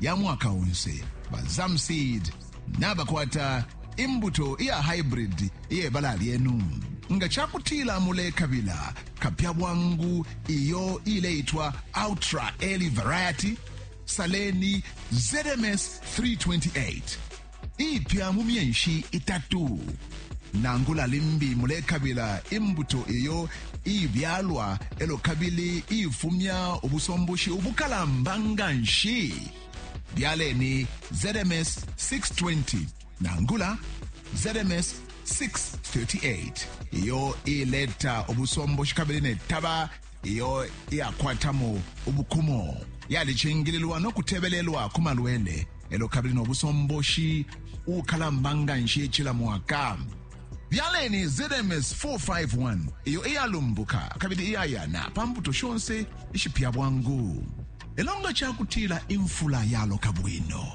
ya mwaka onse ba zamseed nabakwata imbuto iya hybrid iyebala lyenu nga cakutila mulekabila kapya bwangu iyo ileitwa ultra early variety saleni zms 328 iipya mu myenshi itatu nangula limbi mulekabila imbuto iyo iibyalwa elo kabili iifumya ubusomboshi ubukalamba nga nshi byaleni zms 620 nangula zms 638 iyo iileta ubusomboshi kabili netaba iyo iyakwatamo ubukumo yalicingililwa no kutebelelwa ku malwele elo kabili no busomboshi ukalamba nga nshi cila mwaka byaleni zms 451 iyo iyalumbuka kabili iyayana pa mbuto shonse ishipya bwangu elo nga cakutila imfula yaloka bwino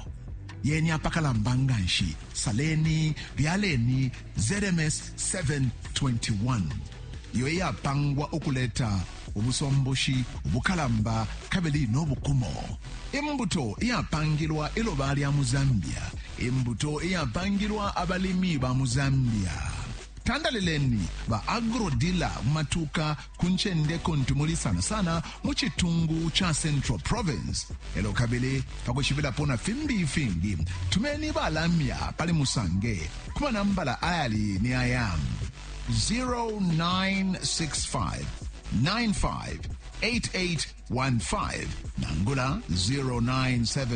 yeni apakalamba nga nshi saleni byaleni ZMS 7:21 iyo iyapangwa ukuleta ubusomboshi ubukalamba kabili no bukumo, imbuto iyapangilwa iloba lya mu Zambia, imbuto iyapangilwa abalimi ba mu Zambia. Tandalileni ba agro-dealer mu matuuka ku ncende kuntu muli sana sana mu citungu ca Central Province. Elo kabili pa kushibilapo na fimbi ifingi, tumeni balamya pali Musange ku manambala ayali ni aya 0965 95 8815 nangula 0977